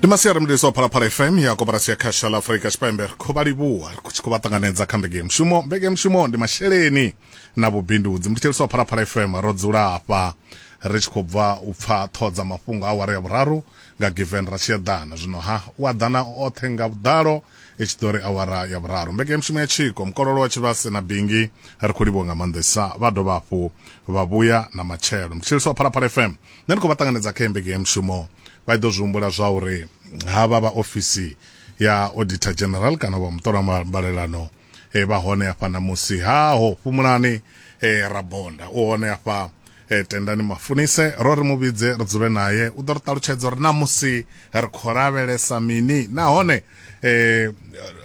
ndi masiari mudisi wa phalaphala fm ya koporasi ya khasha la afurika tshipembe ri khou vha livhuwa ri tshi khou vha ṱanganedza kha mbege mushumo mbege mushumo ndi masheleni na vhubindudzi mutshitsheliso wa phalaphala fm ro dzula hafha ri tshi khou bva u pfa ṱhoho dza mafhungo a ware ya vhuraru nga given ra tshi eḓana zwino ha u aḓana oṱhe nga vhuḓalo i tshi ḓo ri awara ya vhuraru mbeke mushumo ya tshiko mukololo wa tshivhase na bingi ri khou livhuwa nga maanḓesa vha dovha hafhu vha vhuya na matshelo mutshitsheliso wa phalaphala fm nṋe ndi khou vha ṱanganedza kha embege ya mushumo vha ḓo zwi humbula zwa uri havha vha ofisi ya auditor general kana vha muṱola mbalelano e, vha hone hafha na musi haho fhumulani e, rabonda u hone hafha e, tendani mafunise ro ri muvhidze ri dzule naye u ḓo ri ṱalutshedza uri na musi ri khou lavhelesa mini nahone e,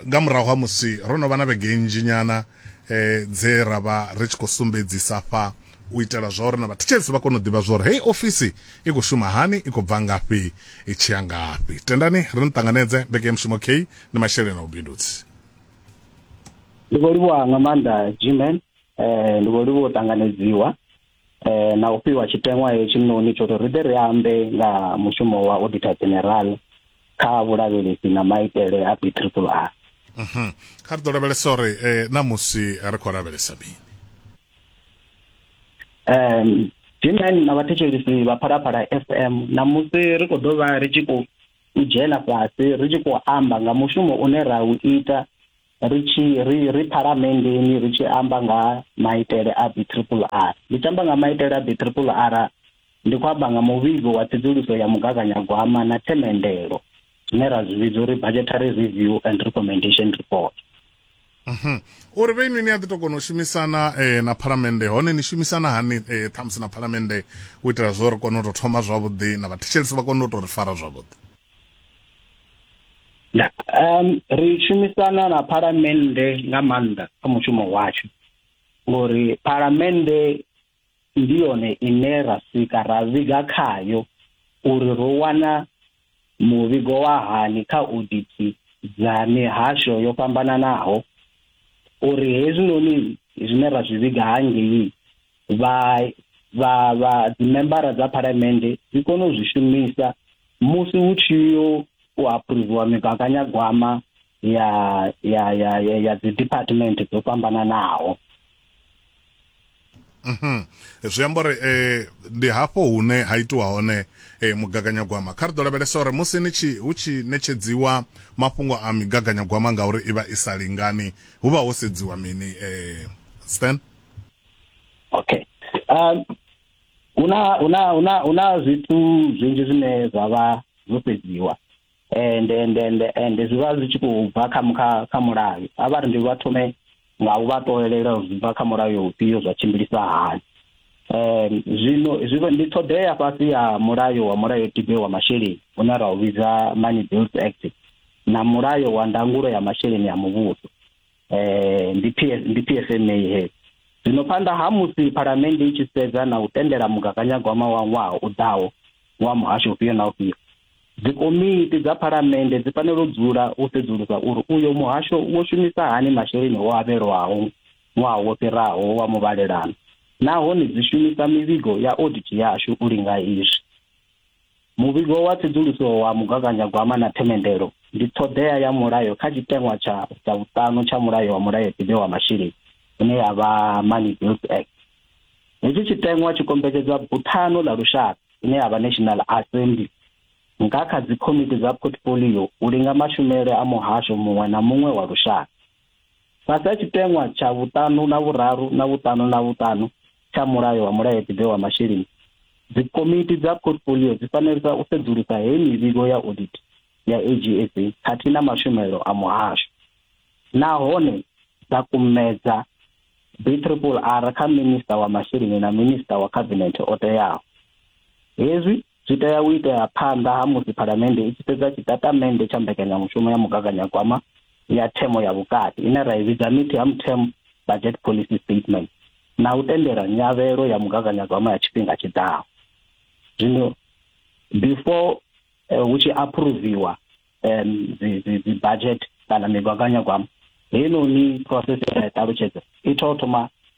nga murahu ha musi ro no vha na vhege nnzhi nyana e, dze ra vha ri tshi khou sumbedzisa fha u itela zwauri na vhathetshelesi vha kone u ḓivha zwauri heyi ofisi i khou shuma hani i khou bva ngafhi i tshi ya ngafhi tendani ri ni ṱanganedze mbekanyamushumo k ndi masheleni a vhubindudzi ndi vho livhuwa nga maanḓa gman um ndi vho livhuwa u ṱanganedziwa um na u fhiwa tshiteṅwa heyo tshiṋoni tsho ri ri ḓe ri ambe nga mushumo wa auditor general kha vhulavhelesi na maitele a b triple r mhm. kha ri ḓo lavhelesa uri um eh, na musi ri khou lavhelesa mini um gmen na vhathetshelesi vha phalaphala fm ṋamusi ri khou ḓo vha ri tshi khou u dzhena fhasi ri tshi khou amba nga mushumo une ra u ita ri tshi ri ri phalamenndeni ri tshi amba nga maitele a b triple r ndi tshi amba nga maitele a b triple r ndi khou amba nga muvhigo wa tsedzuluso ya mugaganyagwama na themendelo zwine ra zwi vhidza uri budgetary review and recommendation report mhm. uri vhe inwi ni a ḓi to kona u shumisana eh, na phalamennde hone ni shumisana hani eh, ṱhamusi na phalamennde u itela zwo ri kone u to thoma zwavhuḓi na vhathetshelisi vha kone u to ri fara zwavhuḓi um ri shumisana na phalamennde nga maanḓa kha mushumo washu ngori phalamennde ndi yone ine ra swika ra vhiga khayo uri ro wana muvhigo wa hani kha odithi dza mihasho yo fhambananaho uri hezwinoni zwine ra zwi vhiga hangei vha vha vha dzimembara dza phalamennde dzi kone u zwi shumisa musi hu tshi yo u aphuruviwa migaganyagwama ya ya ya ya, ya dzi department dzo fhambananaho Mhm. zwi amba uri eh ndi hafho hune ha itiwa hone eh mugaganyagwama kha ri ḓo lavhelesa uri musi ni tshi hu tshi netshedziwa mafhungo a migaganyagwama ngauri i vha i sa lingani hu vha ho sedziwa mini eh Stan okay um una una una una zwithu zwinzhi zwine zwa vha zwo sedziwa ende ende ende ende zwi vha zwi tshi khou bva kha kha kha mulayo a vha ri ndi vha thome nga u vha ṱolelela uri zwi bva kha mulayo ufhio zwa tshimbilisa hani um zwino zwi ndi ṱhoḓea fhasi ya mulayo wa mulayo tibe wa masheleni une ra u vhidza money bills act na mulayo wa ndangulo ya masheleni ya muvhuso eh ndi PS ndi PSNA he zwino phanḓa ha musi phalamennde i tshi sedza na u tendela mugaganyagwama wa ṅwaha u ḓaho wa muhasho ufhio na ufhio dzikomiti dza phalamennde dzi fanela u dzula u sedzulusa uri uyo muhasho wo shumisa hani masheleni o avhelwaho ṅwaha wo fhiraho wa muvhalelano nahone dzi shumisa mivhigo ya audit yashu u linga izwi Muvhigo wa tsedzuluso wa mugaganyagwama na themendelo ndi ṱhoḓea ya mulayo kha tshiteṅwa tsha dza vhuṱanu tsha mulayo wa mulayotibe wa masheleni ine ya vha Money Bills Act. Hetshi tshiteṅwa tshi kombetshedza buthano ḽa lushaka ine ya vha National Assembly nga kha dzikomiti dza portfolio u linga mashumele a muhasho muṅwe na muṅwe wa lushaka. Fhasi ha tshiteṅwa tsha vhuṱanu na vhuraru na vhuṱanu na vhuṱanu tsha Mulayo wa Mulayotibe wa Masheleni, dzikomiti dza portfolio dzi fanela u sedzulusa heyi mivhigo ya audit ya AGSA khathihi na mashumelo a muhasho nahone dza kumedza BRRR kha Minisṱa wa Masheleni na Minisṱa wa Khabinethe o teaho. Hezwi Zwi tea u itea phanḓa ha musi Phalamennde i tshi fhedza tshitatamennde tsha mbekanyamushumo ya mugaganyagwama ya themo ya vhukati, ine ra i vhidza Mid-Term Term Budget Policy Statement, na u tendela nyavhelo ya mugaganyagwama ya tshifhinga tshi ḓaho. Zwino, before hu tshi aphuruviwa dzibadzhete kana migaganyagwama, heinoni process ye nda i ṱalutshedza i tea u thoma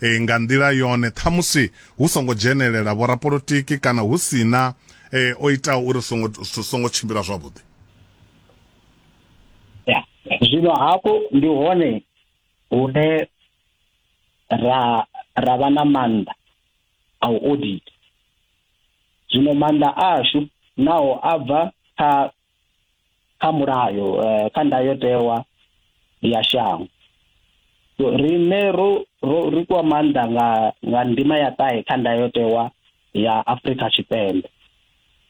e, nga nḓila yone ṱhamusi hu songo dzhenelela vhorapolotiki kana hu sina e, o itaho uri songo songo tshimbila zwavhuḓi zwino hafho ndi hone hune ra ra vha na maanḓa a u audit zwino maanḓa ashu naho a bva kha kha mulayo eh, kha ndayotewa ya shango riṋe ro ri kwa maanḓa nga nga ndima ya ṱahe kha ndayotewa ya Afrika Tshipembe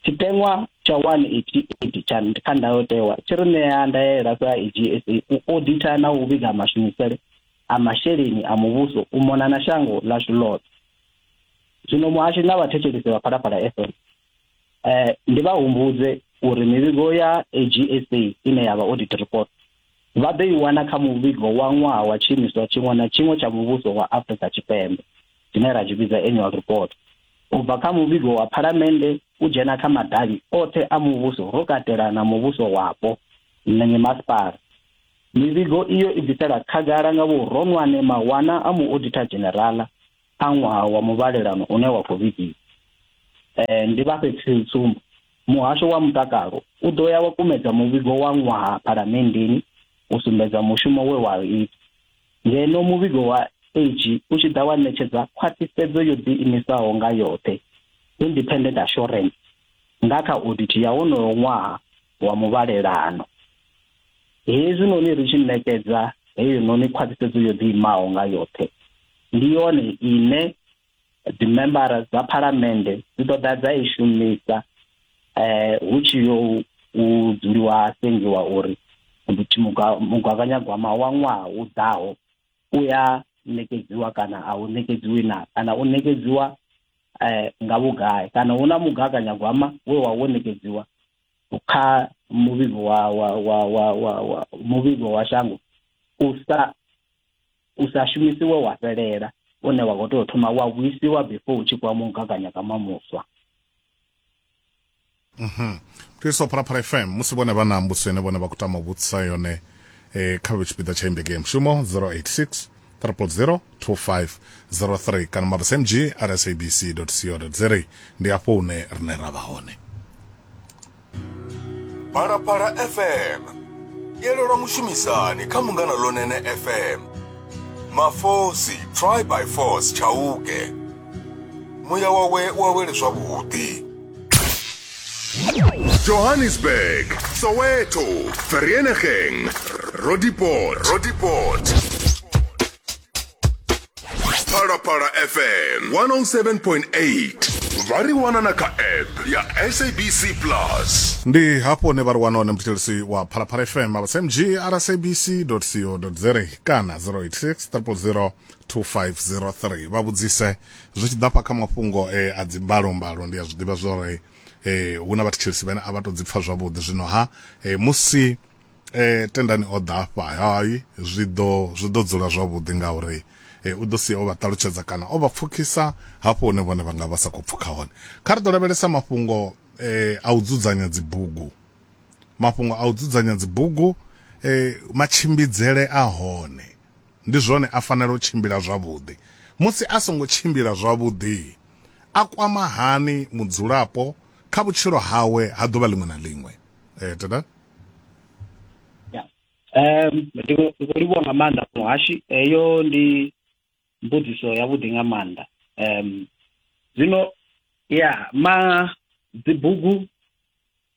tshiteṅwa tsha 188 tsha kha ndayotewa tshi ri ṋea ndaela sa EGSA u oditha na u vhiga mashumisele a masheleni a muvhuso u mona na shango ḽashu ḽoṱhe zwino muhashi na vhathetshelisi vha phalaphala FM eh ndi vha humbudze uri mivhigo ya AGSA ine ya vha audit report vha ḓo i wana kha muvhigo wa ṅwaha wa tshiimiswa tshiṅwe na tshiṅwe tsha muvhuso wa Afrika Tshipembe tshine ra tshi vhidza annual report u bva kha muvhigo wa phalamennde u dzhena kha madavhi oṱhe a muvhuso ro katela na muvhuso wapo na mimasipala mivhigo iyo i bvisela khagala nga vhuronwane mawana a muoditha dzhenerala kha ṅwaha wa muvhalelano une wa khou vhigiwa. Eh, ndi vha fhe tsumbo. Muhasho wa mutakalo u ḓo ya wa kumedza muvhigo wa ṅwaha phalamenndeni u sumbedza mushumo we wa ita. Ngeno muvhigo wa age u tshi ḓa wa ṋetshedza khwaṱhisedzo yo ḓiimisaho nga yoṱhe, independent assurance, nga kha audit ya wonoyo ṅwaha wa muvhalelano. Hezwinoni ri tshi ṋekedza heyinoni khwaṱhisedzo yo ḓiimaho nga yoṱhe, ndi yone ine dzimembara dza phalamennde dzi ḓo ḓa dza i shumisa eh, hu tshi yo u dzuliwa ha sengiwa uri mugaganyagwama wa ṅwaha u ḓaho u ya ṋekedziwa kana a u ṋekedziwi na kana u ṋekedziwa eh, nga vhugai kana hu na mugaganyagwama we wa wo ṋekedziwa kha muvhigo wa wa wa wa wa, wa muvhigo wa shango u sa u sa shumisiwe wa fhelela une wa khou tea u thoma wa vhuisiwa before u tshi kuwa mugaganyagama muswa mhm thuso phalaphala fm musi vhone vha na mbuso ine vhone vha khou tama u vhudzisa yone eh, kha vhe tshipiḓa tsha imbege ya mushumo 086 0802503 kana mabsmg at sabc co za ndi afho hune rine ra vha hone phalaphala fm yelelwa mushumisani kha mungana lonene fm mafosi try by force tshauke muya wawe wa wele zwavhuḓi Johannesburg, Soweto, Vereeniging, Roodepoort, Roodepoort. Parapara FM 107.8. Vari wana na ka app ya SABC Plus. ndi hapo hune vha ri wana hone muthetshelesi wa phalaphala fm avha smg rsabc co za kana 086 000 2503 vha vhudzise zwi tshi ḓa hafha kha mafhungo e a dzi mbalo mbalo ndi a zwi ḓivha zwa uri eh hu na vhathetshelesi vhane a vha to dzi pfa zwavhuḓi zwino ha eh, musi eh tendani o ḓa hafha hai zwi ḓo zwi ḓo dzula zwavhuḓi ngauri eh, u ḓo sia o vha ṱalutshedza kana o vha pfukisa hafho hune vhone vha nga vha sa khou pfuka hone kha ri ḓo lavhelesa mafhungo eh, a u dzudzanya dzibugu mafhungo a u dzudzanya dzibugu eh, matshimbidzele a hone Ndi zwone, a fanela u tshimbila zwavhuḓi. Musi a songo tshimbila zwavhuḓi, a kwama hani mudzulapo kha vhutshilo hawe ha ḓuvha ḽiṅwe na ḽiṅwe? Tada. Ndi khou livhuwa nga maanḓa muhashi, heyo ndi mbudziso ya vhuḓi nga maanḓa. Zwino ya ma dzibugu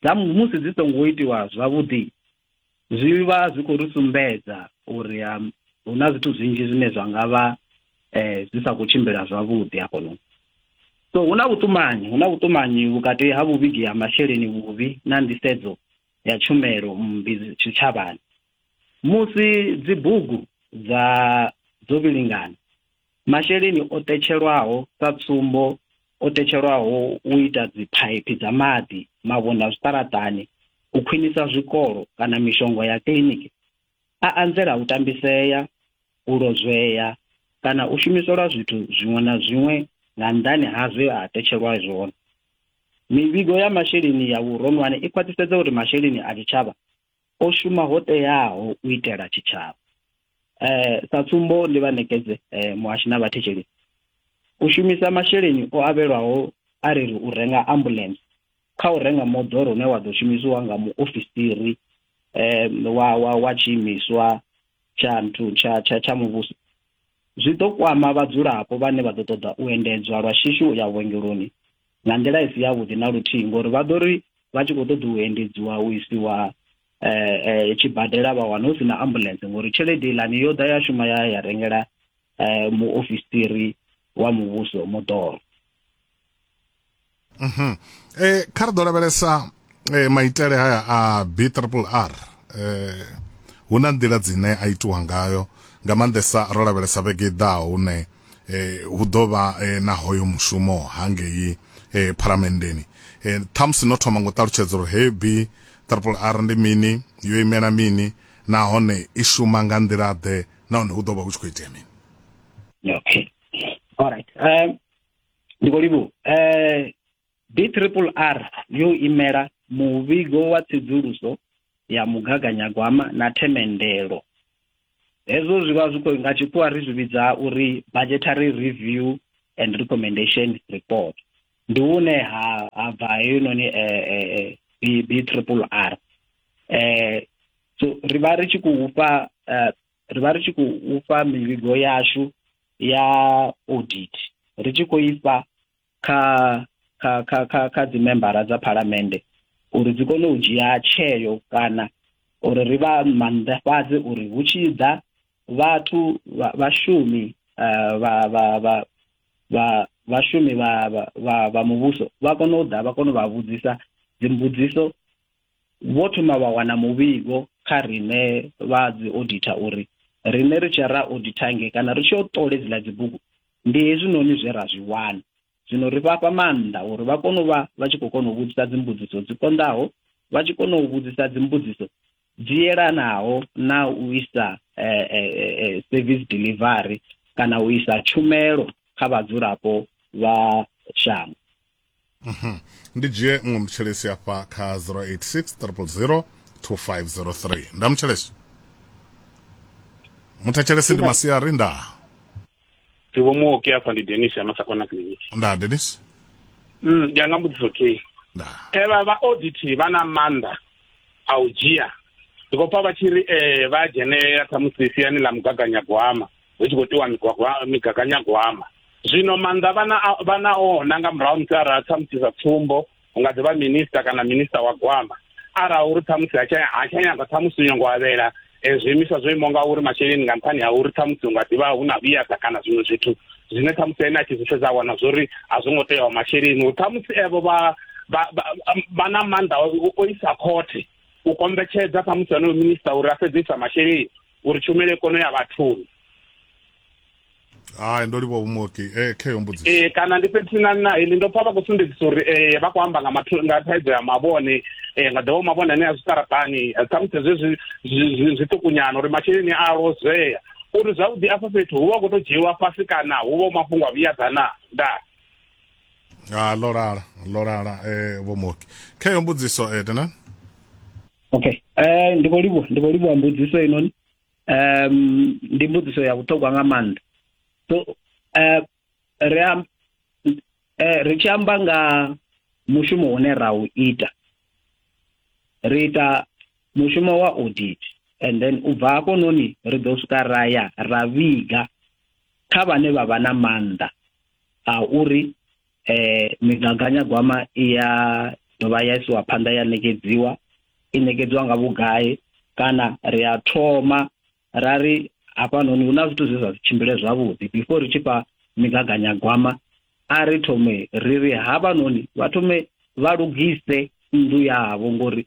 dza musi dzi songo itiwa zwavhuḓi, zwi vha zwi khou ri sumbedza uri um, hu na zwithu zwinzhi zwine zwa nga vha um zwi sa khou tshimbila zwavhuḓi hafhanoni so hu na vhuṱumanyi hu na vhuṱumanyi vhukati ha vhuvhigi ha masheleni vhuvhi na nḓisedzo ya tshumelo mmbi tshitshavhani musi dzibugu dza dzo vhilingana Masheleni o tetshelwaho sa tsumbo o tetshelwaho u ita dziphaiphi dza maḓi, mavhonda zwiṱaraṱani, u khwinisa zwikolo kana mishonga ya kiḽiniki a anzela u tambisea, u lozwea kana u shumiselwa zwithu zwiṅwe na zwiṅwe nga nnḓani ha zwe a tetshelwa zwone. Mivhigo ya masheleni ya vhuronwane i khwaṱhisedza uri masheleni a tshitshavha o shuma ho teaho u itela tshitshavha eh sa tsumbo ndi vha nekedze eh, muhashi na vhathetshelesi u shumisa masheleni o avhelwaho a ri ri u renga ambulance kha u renga moḓoro une wa ḓo shumisiwa nga muofisiri eh wa wa wa tshiimiswa tsha nthu tsha tsha tsha muvhuso zwi ḓo kwama vhadzulapo vhane vha ḓo ṱoḓa u endedzwa lwa shishi u ya vhuongeloni nga nḓila i si yavhuḓi na luthihi ngori vha ḓo ri vha tshi khou ṱoḓa u endedziwa u isiwa eh, eh, tshibadela vha wana hu si na ambulance ngori tshelede ilani yo ḓa ya shuma ya ya rengela eh, muofisiri wa muvhuso moḓoro Mhm. Eh kha ri ḓo lavhelesa e, maitele haya a b triple r eh, hu na nḓila dzine a itiwa ngayo nga maanḓesa ro lavhelesa vhege i ḓaho hune eh, hu ḓo vha eh, na hoyo mushumo hangei eh, phalamendeni eh, ṱhamusi no thoma ngo ṱalutshedza uri hei b triple r ndi mini yo imela mini nahone i shuma nga nḓila ḓe nahone hu ḓo vha hu tshi khou itea mini okay all right um ndi khou livhuwa um DRRR yo imela muvhigo wa tsedzuluso ya mugaganyagwama na themendelo. Hezwo zwi vha zwi khou nga tshikhuwa ri zwi vhidza uri budgetary review and recommendation report. Ndi hune ha ha bva heinoni eh, eh, eh, B- BRRR. Eh, so ri vha ri tshi khou fha eh, ri vha ri tshi khou fha mivhigo yashu ya audit ri tshi khou ifha kha kha kha kha kha dzi membara dza phalamende uri dzi kone u dzhia tsheo kana uri ri vha mannḓafhadze uri hu tshi ḓa vhathu vhashumi eh, vha vha vha vha vhashumi vha vha vha muvhuso vha kone u ḓa vha kone u vha vhudzisa dzimbudziso vho thoma vha wana muvhigo kha riṋe vha dzi auditor uri riṋe ri tshi ra auditor nge kana ri tshi yo ṱole dziḽa dzibugu Ndi hezwinoni zwe ra zwi wana. Zwino ri vha fha maanḓa uri vha kone u vha vha tshi khou kona u vhudzisa dzimbudziso dzi konḓaho, vha tshi kona u vhudzisa dzimbudziso dzi yelanaho na u isa eh, eh, eh, eh service delivery kana u isa tshumelo kha vhadzulapo vha shango. Mhm. ndi dzhie nngwe mutshelesi afha kha 086000 2503 nda mutshelesi muthetshelesi ndi masiari nda Tivo muoki afha ndi Dennis ya Masakona Clinic. nda denis Mm, ndi anga mbudziso okay. nda Evha vha audit vha na mannḓa a u dzhia. Ndi khou pfa vha tshi ri eh vha dzhenelela khamusi siani ḽa mugaganyagwama. hu tshi khou tiwa migaganyagwama zwino maanḓa vhana vhana ona nga murahu musi arali thamusi sa tsumbo hu nga ḓivha minista kana minista wa gwama arali uri thamusi ha tsha nyanga thamusi nyongo avhela e, zwiimiswa zwo imaho nga uri masheleni nga nṱhani ha uri thamusi hu nga ḓivha hu na vhuyasa kana zwiṅwe zwithu zwine thamusi ene a tshi zwi sedza wana zwo ri a zwo ngo teaho masheleni uri thamusi evo vha vha na maanḓa o isa khothe u kombetshedza thamusi onoyo minista uri a sedzisa masheleni uri tshumelo i kone ya vhathuni hai ndo livha humoki e eh, kheyo mbudziso e kana ndi fhethu na na ili ndo pfa vha khou sumbedzisa uri e vha khou amba nga mathu nga thaidzo ya mavhone e nga ḓovha mavhone ane a zwiṱaraṱani ṱhamusi zwezwi zwiṱukunyana uri masheleni a lozwea uri zwavhuḓi afho fhethu hu vha khou tou dzhiiwa fhasi kana hu vha mafhungo a vhuyadzana nda a ah, lolala lolala e eh, vhomoki kheyo mbudziso e eh, tena okay eh ndi khou livhuwa ndi khou livhuwa mbudziso inoni um ndi mbudziso ya vhuṱhogwa nga maanḓa so eh ri am eh ri tshi amba nga mushumo une ra u ita ri ita mushumo wa audit and then u bva hafho noni ri ḓo swika ra ya ra vhiga kha vhane vha vha na maanḓa a uri eh migaganyagwama i ya dovha ya isiwa phanḓa ya ṋekedziwa i ṋekedziwa nga vhugai kana ri a thoma ra ri hafhanoni hu na zwithu zwe zwa si tshimbile zwavhuḓi before ri tshi fha migaganyagwama a ri thome ri ri hafhanoni vha thome vha lugise nnḓu yavho ngori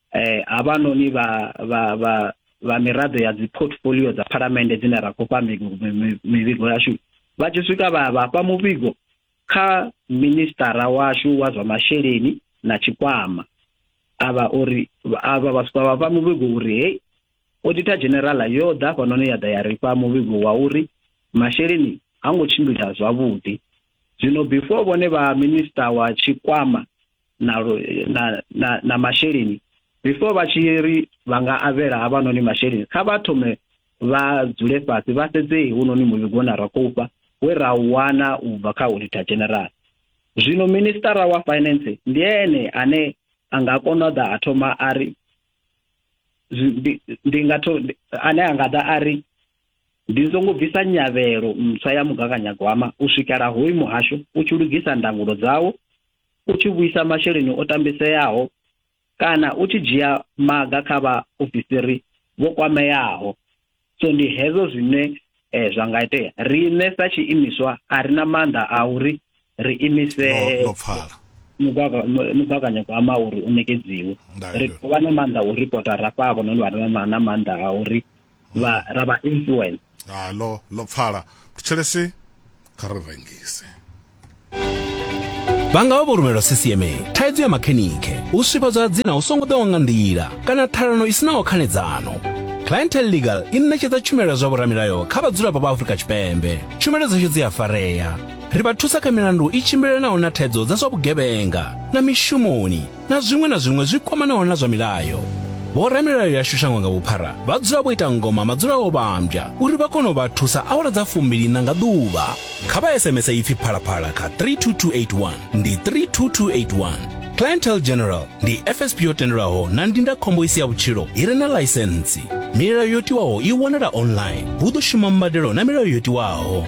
eh havhanoni vha vha vha vha miraḓo ya dzi portfolio dza phalamennde dzine ra khou fha mivhigo yashu vha tshi swika vha vha fha muvhigo kha ministara washu wa zwa masheleni na tshikwama avha uri avha vha swika vha fha muvhigo uri hey auditor general yo ḓa fhanoni ya ḓa ya ri fha muvhigo wa uri masheleni ha ngo tshimbila zwavhuḓi zwino before vhone vha minister wa tshikwama na, na, na, na masheleni before vha tshi ri vha nga avhela havhanoni masheleni kha vha thome vha dzule fhasi vha sedzee hunoni muvhigo une ra khou fha we ra wana u bva kha auditor general zwino ministara wa finance ndi ene ane a nga kona u ḓa a thoma a ri ndi nga to ane a nga ḓa a ri ndi songo bvisa nyavhelo ntswa ya mugaganyagwama u swikela hoyu muhasho u tshi lugisa ndangulo dzawo u tshi vhuisa masheleni o tambiseaho kana u tshi dzhia maga kha vha ofisiri vho kwameaho so ndi hezwo zwine eh, zwa nga itea riṋe sa tshiimiswa a ri na maanḓa a uri ri imise mugaganyagwama uri u nekedziwe ri vha na maanḓa a u ripota rafha havho noni vha na maanḓa a uri vha ra vha influence ha lo lo pfala thetshelesi kha ri rengise vha nga vha vho rumelwa ccma thaidzo ya makhenikhe u swifhadzwa ha dzina hu songo ḓewa nga nḓila kana ṱhalano i sinaho khanedzano clientel legal i ṋetshedza tshumelo ya zwa vhoramilayo kha vhadzulapo vha afurika tshipembe tshumelo dzashu dzi a farea ri vha thusa kha milandu i tshimbilelanaho na thaidzo dza zwa vhugevhenga na mishumoni na zwiṅwe na zwiṅwe zwi kwamanaho na zwa milayo vhoramilayo yashu shango nga vhuphara vha dzula vho ita ngoma madzula o vhambya uri vha kone u vha thusa awara dza fumbilina nga ḓuvha kha vha sms ipfi phalaphala kha 32281 ndi 32281 clientele general ndi fsp yo tendelwaho na ndindakhombo i si ya vhutshilo i re na laisentsi milayo yo tiwaho i wanala online hu ḓo shuma mbadelo na milayo yo tiwaho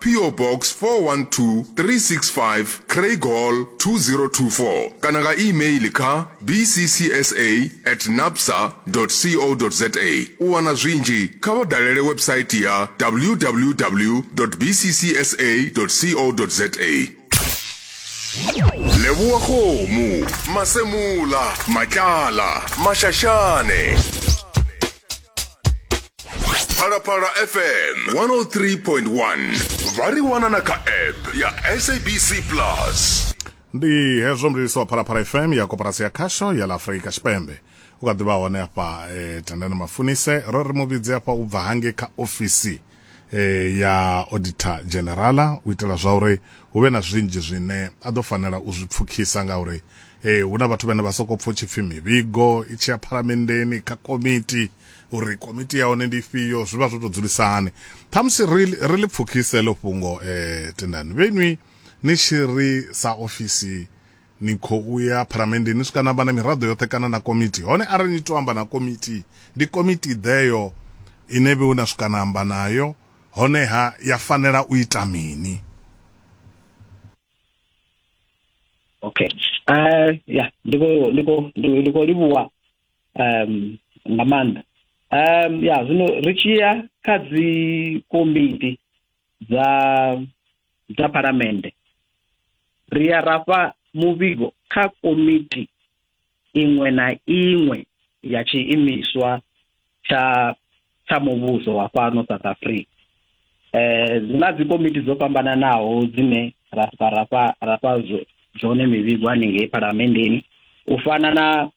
PO Box 412365 Craighall 2024 kana nga e-mail kha bccsa at napsa co za. U wana zwinzhi kha vha dalele website ya www bccsa co za. Leboa Kgomo, Masemola, Matlala, Mashashane. phalaphala fm 103.1 vha ri wana na kha app ya sabc plus ndi hezwo mlilisi wa phalaphala fm ya koporasi ya khasho ya la afurika tshipembe u kha ḓivha hone afha eh, tandani mafunise ro ri mu vhidze afha u bva hange kha ofisi eh, ya auditor generala u itela zwa uri hu vhe na zwinzhi zwine a ḓo fanela u zwi pfukhisa ngauri eh, hu na vhathu vhane vha sokou pfa u tshi pfi mivhigo i tshi ya phalamendeni kha komiti uri komiti ya hone ndi ifhio zwi vha zwo tou dzulisa hani ṱhamusi ri ri ḽi pfukhise ḽo fhungo eh, tendani vhenwi ni tshi ri sa ofisi Ni khou ya Phalamenndeni ni swika na amba na miraḓo yoṱhe kana na komitii. Hone arali ni tou amba na komitii, ndi komitii ḓeyo ine vhe na swika na amba nayo, honeha ya fanela u ita mini? Okay. Uh, ya, ndi khou ndi khou ndi khou livhuwa um nga maanḓa. Um ya, zwino ri tshi ya kha dzi komiti dza dza phalamennde ri ya rafha muvhigo kha komiti iṅwe na iṅwe ya tshiimiswa tsha tsha muvhuso wa fhano South Africa eh zina dzi komiti dzo fhambananaho dzine ra rafha rafha zwone mivhigo haningei phalamenndeni u fana na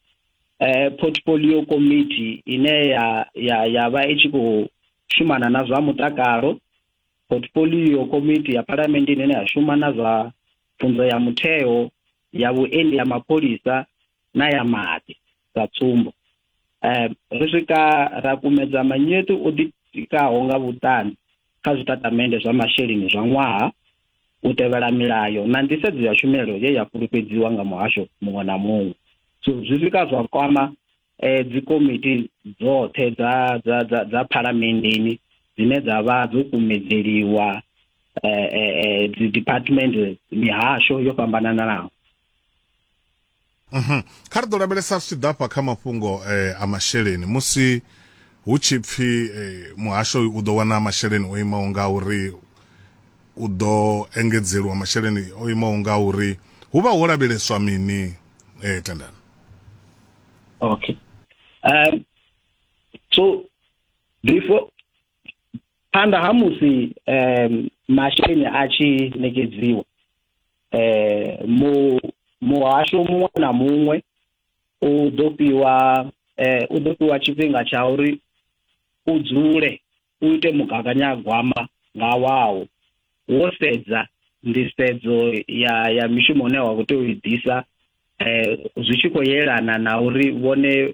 eh, portfolio committee ine ya ya ya vha i tshi khou shumana na zwa mutakalo portfolio committee ya phalamende ine ya shuma na zwa pfunzo ya mutheo ya vhuendi ya mapholisa na ya maḓi sa tsumbo um ri swika ra kumedza manyetu o ḓitikaho nga vhuṱanzi kha zwitatamennde zwa masheleni zwa ṅwaha u tevhela milayo na nḓisedzo ya tshumelo ye ya fhulufhedziwa nga muhasho muṅwe na muṅwe so zwi swika zwa kwama eh dzikomiti dzoṱhe dza dza dza dza phalamenndeni dzine dza vha dzo kumedzeliwa eh eh, eh dzi department mihasho yo fhambananaho Mhm. Kha ri ḓo lavhelesa zwi tshi ḓa fha kha mafhungo eh, a masheleni musi hu tshi pfi eh, muhasho uyu u ḓo wana masheleni o imaho nga uri u ḓo engedzeliwa masheleni o imaho nga uri hu vha ho lavheleswa mini eh, tendani Okay. Um, so before phanḓa ha musi um, masheleni a tshi ṋekedziwa eh mu muhasho muṅwe na muṅwe u ḓo fhiwa eh u ḓo fhiwa tshifhinga tsha uri u dzule u ite mugaganyagwama nga wawo wo sedza nḓisedzo ya ya mishumo une wa khou tea u i ḓisa eh zwi tshi khou yelana na uri vhone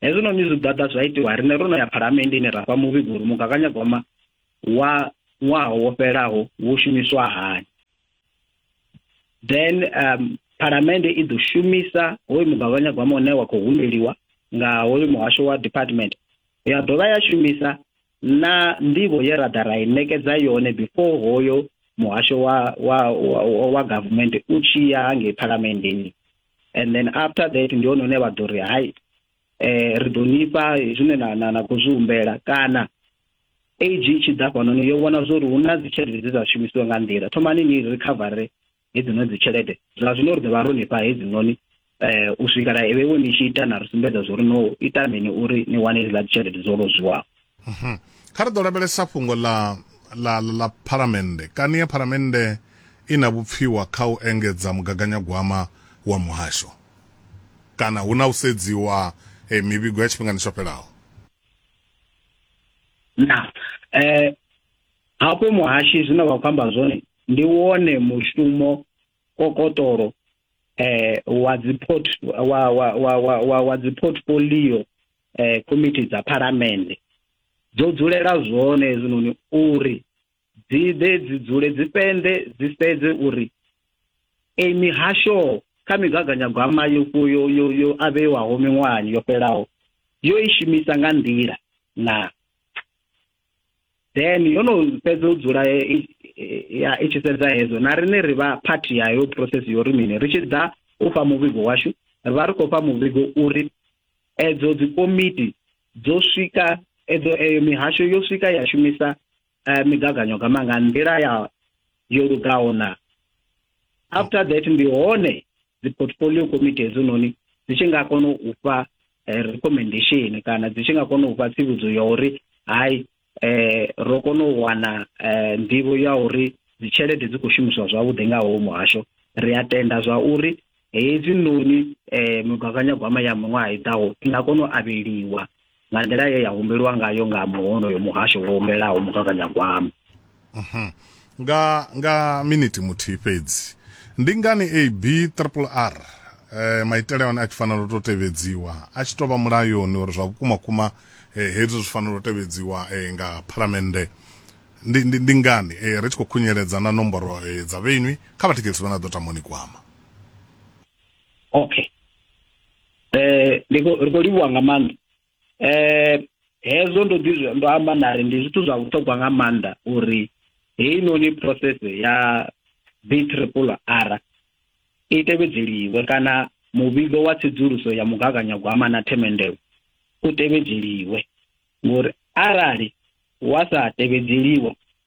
Hezwinoni zwigwada zwa itiwa riṋe ro no ya Phalamenndeni ra fha muvhigo uri mugaganyagwama wa ṅwaha wo fhelaho wo shumiswa hani, then um, Phalamennde i ḓo shumisa hoyu mugaganyagwama une wa khou humbeliwa nga hoyu muhasho wa department ya dovha ya shumisa na nḓivho ye ra ḓa ra i ṋekedza yone before hoyo muhasho wa wa wa, wa government u tshi ya hangei phalamenndeni and then after that ndi hone hune vha ḓo ri hai eh ri ḓo nifha zwine na na na khou zwi humbela kana age i tshi ḓa fhanoni yo vhona zwori hu na dzi tshelede dze dza shumisiwa nga nḓila thomani ni recovery hedzinoni dzi tshelede zwa zwino ri ḓo vha ro lifha hedzinoni um u swikela vhewe ni tshi ita na ri sumbedza zwo ri no ita mini uri ni wane hedzila dzi tshelede dzo lozwiwaho mhm. kha ri ḓo lavhelesa fhungo ḽa ḽa ḽa phalamennde kani ya phalamennde i na vhupfiwa kha u engedza mugaganyagwama wa muhasho kana hu na u sedziwa e, mivhigo ya tshifhingani tsho fhelaho na um Hafho muhashi zwine vha khou amba zwone ndi wone mushumo kokotoro eh wa dzi port wa wa wa wa wa dzi portfolio eh committee dza phalamende dzo dzulela zwone hezwinoni uri dzi ḓe dzi dzule dzi pende dzi sedze uri ei mihasho kha migaganyagwama yo yo yo yo avhewaho miṅwahani yo fhelaho yo i shumisa nga nḓila na then yo no fhedza u dzula ya i tshi sedza hezwo na riṋe ri vha phathi yayo process yo ri mini ri tshi ḓa u fha muvhigo washu ri vha ri khou fha muvhigo uri edzo dzikomiti dzo swika edzo eyo mihasho yo swika ya shumisa eh, migaganyagwama nga nḓila ya yo lugaho na after that ndi hone dzi portfolio committee hedzinoni dzi tshi nga kona u fha eh, recommendation kana dzi tshi nga kona u fha tsivhudzo ya uri hai eh, ro kona u wana eh, nḓivho ya uri dzitshelede dzi khou shumiswa zwavhuḓi nga howo muhasho ri a tenda zwa uri Hedzinoni migaganyagwama ya miṅwaha i ḓaho i nga kona u avheliwa nga nḓila ye ya humbelwa ngayo nga muhonoyo muhasho wo humbelaho mugaganyagwama. Mhm. Nga nga miniti muthihi fhedzi. Ndi ngani ABRRR eh, maitele one a tshi fanela u tou tevhedziwa a tshi tou vha mulayoni uri zwa vhukuma kuma eh, hezwi zwi fanela u tevhedziwa eh, nga phalamennde ndi, ndi, ndi ngani eh, ri tshi khou khunyeledza na nomboro eh, dza vhenwi kha vhathikhelisi vha na ḓo tamoni kwama. okay eh ri khou livhuwa nga maanḓa eh hezwo ndo ḓi ndo amba na ri ndi zwithu zwa vhuṱhogwa nga maanḓa uri heinoni process ya b triple r i tevhedzeliwe kana muvhigo wa tsedzuluso ya mugaganyagwama na themendelo u tevhedzeliwe ngori arali wa sa tevhedzeliwa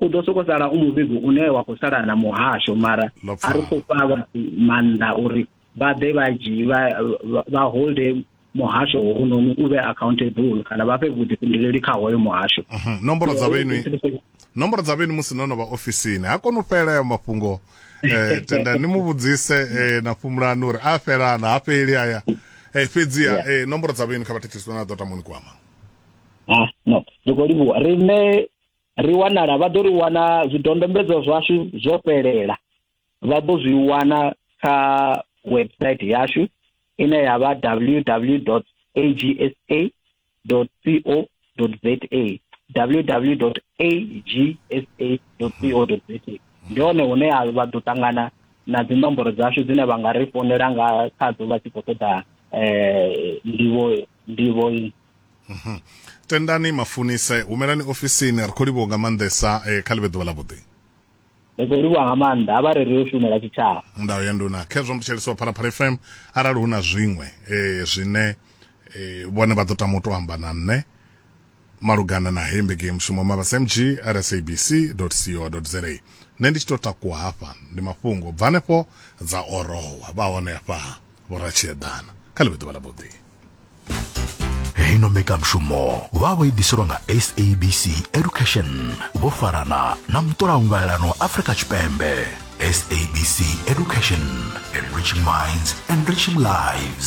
u ḓo soko sala u muvhigo une wa khou sala na muhasho mara a ri khou fha vhathu maanḓa uri vha ḓe vha dzhii vha holde muhasho hounoni u vhe accountable kana vha fhe vhuḓifhinduleli kha hoyo muhasho mhm. nomboro dza vhenu nomboro dza vhenu musi no no vha ofisini ha koni u fhela ayo mafhungo eh, tenda ni mu vhudzise eh, na fhumulani uri a fhelana ha fheli aya eh, fhedziha eh, nomboro dza vhenu kha vhathetshiswa na ḓo tamoni kwama ah, no ri khou livhuwa riṋe ri wanala vha ḓo ri wana zwidodombedzwa zwashu zwo fhelela vha ḓo zwi wana kha website yashu ine ya vha www agsa co za www agsa co za ndi hone hune vha ḓo ṱangana na dzi nomboro dzashu dzine vha nga ri founela nga khadzo vha tshi khou ṱoḓa um ndivho ndivho i mhm. tendani mafunise humelani ofisini ri khou livhuwa nga maanḓesa eh, kha ḽivhe ḓuvha ḽa vhuḓi ri khou livhuwa nga maanḓa a vha ri ri u shumela tshitshavha ndayo ya nduna khezwo mbutsheliso wa phalaphala fm arali hu na zwiṅwe eh, zwine eh, vhone vha ḓo tama u to amba na nṋe malugana na heyi mbekeyamushumo mavhasmg at sabc co za nṋe ndi tshi tou takuwa hafha ndi mafhungo bva hanefho dza orowa vha hone hafha vhoratshiedana kha ḽi vhe ḓuvha ḽa vhuḓi heino mbekanyamushumo vha vho i ḓiselwa nga sabc education vho farana na mutolaungalelano afrika tshipembe sabc education enriching minds enriching lives